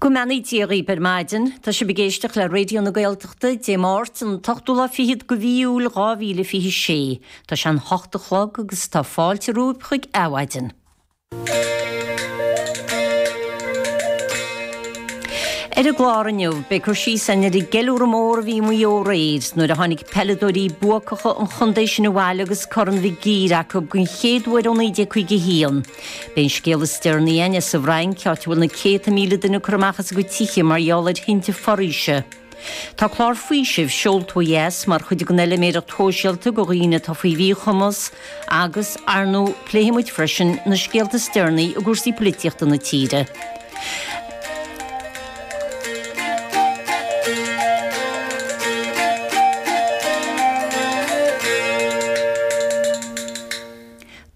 Go mbeannaí Dia dhaoibh ar maidin. Tá sibh ag éisteacht le Raidió na Gaeltachta, Dé Máirt, an t-ochtú lá fichead de mhí Iúil, dhá mhíle fiche sé. Tá sé an hocht a chlog agus tá fáilte romhaibh chuig Adhmhaidin. Ar an gclár inniu, beidh cur síos ar an gceiliúradh mór a bhí i Maigh Eo aréir nuair a tháinig peileadóirí buacacha an chontae sin abhaile agus Corn Mhig Uidhir acu den chéad uair ó 1951. Beidh an scéal is deireanaí againn sa bhFrainc, áit a bhfuil na céadta míle duine curtha amach as a gcuid tithe mar gheall ar thinte foraoise. Tá clár faoisimh seolta ó dheas mar chuid den fheiliméireacht shóisialta do dhaoine atá faoi mhíchumas agus, ar ndóigh, pléifidh muid freisin na scéalta is deireanaí i gcúrsaí poilitíochta na tíre.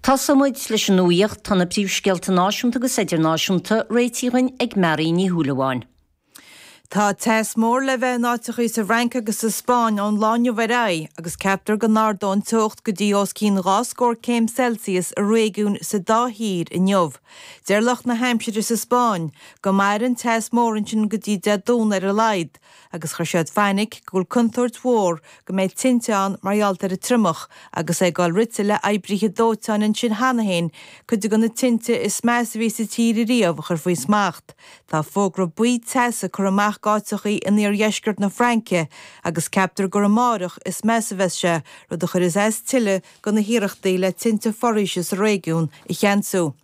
Tosóidh muid leis an nuaíocht, tá na príomhscéalta náisiúnta agus idirnáisiúnta réitithe dhúinn ag Máirín Ní Shúilleabháin. Tá teas mór le bheith in áiteachaí sa bhFrainc agus sa Spáinn ón lá inniu ar aghaidh agus ceaptar go n-ardóidh an teocht go dtí os cionn dhá scór céim Celsius i réigiúin sa dá thír inniu. Deir lucht na haimsire sa Spáinn go mairfidh an teas mór ansin go dtí Dé Domhnaigh ar a laghad, agus cuireann siad fainic go bhfuil contúirt mhór go mbeidh tinte ann mar gheall ar an triomach, agus é ag dul rite le oibrithe dóiteáin ansin cheana féin, cuid de na tinte is measa a bhí sa tír ariamh a chur faoi smacht. Tá fógra buí teasa curtha amach d'áiteachaí in iardheisceart na Fraince, agus ceaptar gur amáireach is measa a bheas sé, rud a chuirfidh as tuilleadh do na hiarrachtaí le tinte foraoise sa réigiún a cheansú.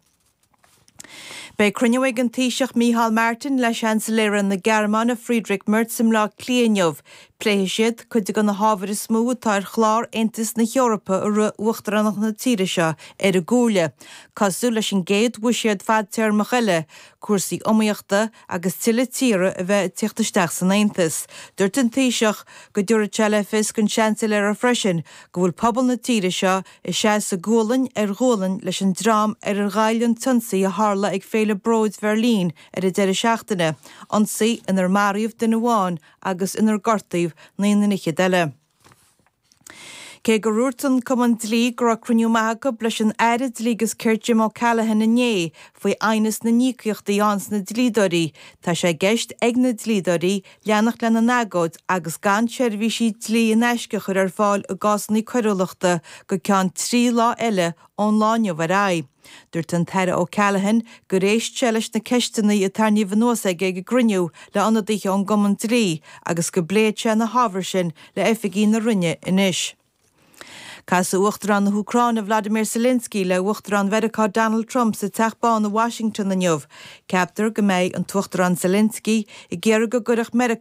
Beidh cruinniú ag an Taoiseach Micheál Martin le Seansailéara na Gearmáine Friedrich Merz i mBleá Cliath inniu. Pléifidh siad cuid de na hábhair is mó atá ar chlár Aontas na hEorpa i rith uachtaránacht na tíre seo ar an gComhairle, cosúil leis an gcéad bhuiséad fadtéarmach eile, cúrsaí iomaíochta agus tuilleadh tíortha a bheith ag teacht isteach san Aontas. Dúirt an Taoiseach go dtabharfaidh sé le fios don Seansailéara freisin go bhfuil pobal na tíre seo ag seasamh gualainn ar ghualainn leis an dream ar ar ghoill an t-ionsaí a tharla ag Féile Bróid Bheirlín ar an deireadh seachtaine, ionsaí inar maraíodh duine amháin agus inar gortaíodh naoi nduine fhichead eile. Cé gur dhúirt an Cumann Dlí go raibh cruinniú maith acu leis an Aire Dlí agus Cirt Jim O'Callaghan inné faoi aighneas na n-íocaíochtaí do na dlíodóirí, tá sé i gceist ag na dlíodóirí leanacht lena n-agóid agus gan seirbhísí dlí in aisce a chur ar fáil i gcásanna coiriúlachta go ceann trí lá eile ón lá inniu ar aghaidh. Dúirt an tAire O'Callaghan gur éist sé leis na ceisteanna a tarraingíodh anuas aige ag an gcruinniú le hionadaithe ón gCumann Dlí agus go bpléifidh sé na hábhair sin le oifigigh na Roinne anois. Casadh Uachtarán na hÚcráine Vladimir Zelensky le hUachtarán Mheiriceá Donald Trump sa Teach Bán i Washington inniu. Ceaptar go mbeidh an tUachtarán Zelensky ag iarraidh go gcuirfeadh Meiriceá